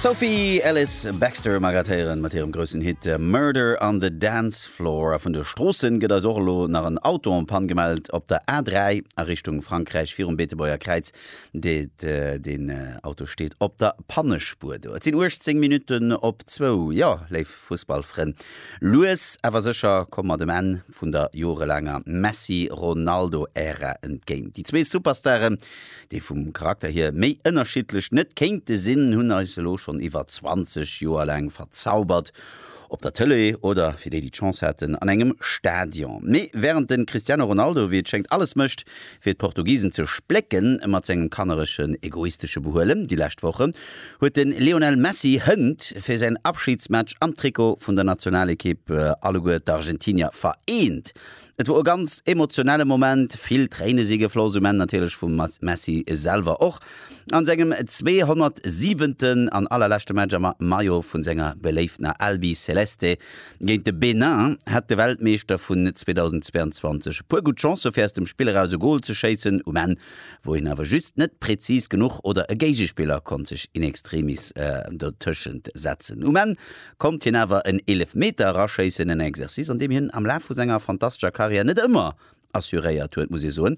D'Sophie Ellis Bextor mag grattéieren mat hirem groussen Hit äh, Murder on the Dance Floor. A vun de Stroossen gëtt eis och elo nach en Auto en Panne gemellt op der A3 a Richtung Frankräich virum Beetebuerger Kräiz. Deet, äh, deen äh, Auto steet op der Pannespuer do. Et sinn 18 Minutten op zwou. Jo, léif Fussballfrënn, lues awer sécher komme mer dem Enn. vun der jorelaanger Messi-Ronaldo-Ära entgéint. Déi zwee Superstaren, déi vum Charakter hier méi ënnerschiddlech net kéinte sinn, hunn eis elo schonn iwwer 20 Joer laang verzaubert, op der Tëlee oder, fir déi, déi d'Chance haten, an engem Stadion. Mee wärend de Cristiano Ronaldo, wéi et schéngt, alles mécht, Fir d'Portugisen ze splécken mat sengem kannereschen, egoistesche Behuelen déi lescht Woche, huet de Lionel Messi hënt fir säin Abschidsmatch am Trikot vun der Nationalekipp alleguer d'Argentinier vereent. Et wor e ganz emotionelle Moment, vill Tréine si gefloss, um Enn natierlech vum Messi selwer och, a sengem 207. an allerleschte Match am Maillot vu senger beléiftener Albi Celeste. Géint de Benin hat de Weltmeeschter vun 2022 e puer gutt Chancë fir aus dem Spill eraus e Gol ze schéissen, um Enn wor hien awer just net präzis genuch oder e Géigespiller konnt sech in extremis dotëschent setzen. Um Enn konnt hien awer en Eelefmeter eraschéissen, en Exercice an deem hien am Laf vu senger fantastescher Karriär net ëmmer assuréiert huet, muss ee soen.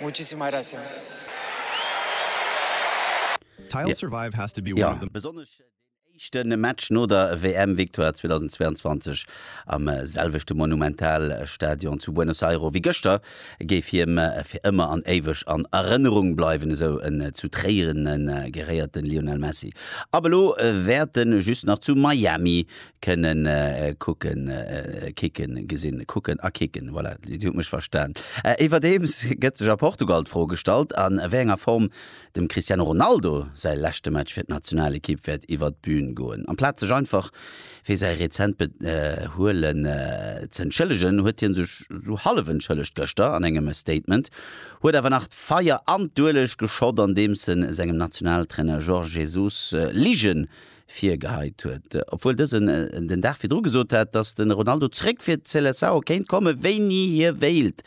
Muchísimas gracias. Jo, besonnesch deen éischten Match no der WM-Victoire 2022 am selwechten Monumental-Stadion zu Buenos Airo wéi gëschter géif him fir ëmmer an éiweg an Erënnerung bleiwen, esou en zu Tréiren geréierten Lionel Messi. Ab elo wäert en just nach zu Miami kënnen kucken, kicken, gesinn, kucken a kicken, voilà, Dir hutt mech verstan. Iwwerdeems gëtt sech a Portugal d'Fro gestallt, a wéi enger Form dem Cristiano Ronaldo säi leschte Match fir d'Nationalekipp wäert iwwert d'Bühn goen. Amplaz sech einfach fir säi rezent Behuelen z'entschëllegen, huet hie sech esou hallef entschëllegt gëschter an engem Statement, huet awer nach d'Feier an d'Ueleg geschott, andeems e sengem Nationaltrainer Jorge Jesus Ligen virgeheit huet, obwuel dësen den Dag virdru gesot hat, datt de Ronaldo zréck fir d'Seleçao kéint kommen, wéini hie wéilt.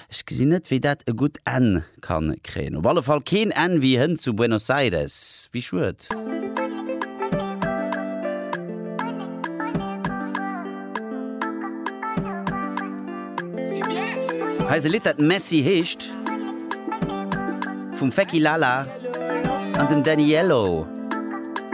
Ech gesinn net, wéi dat e gutt Enn ka kréien. Op alle Fall keen Enn wéi hënt zu Buenos Aires. Wéi schued. Hei ass e Lidd, dat Messi heescht, vum Fecky Lala an dem Daniello.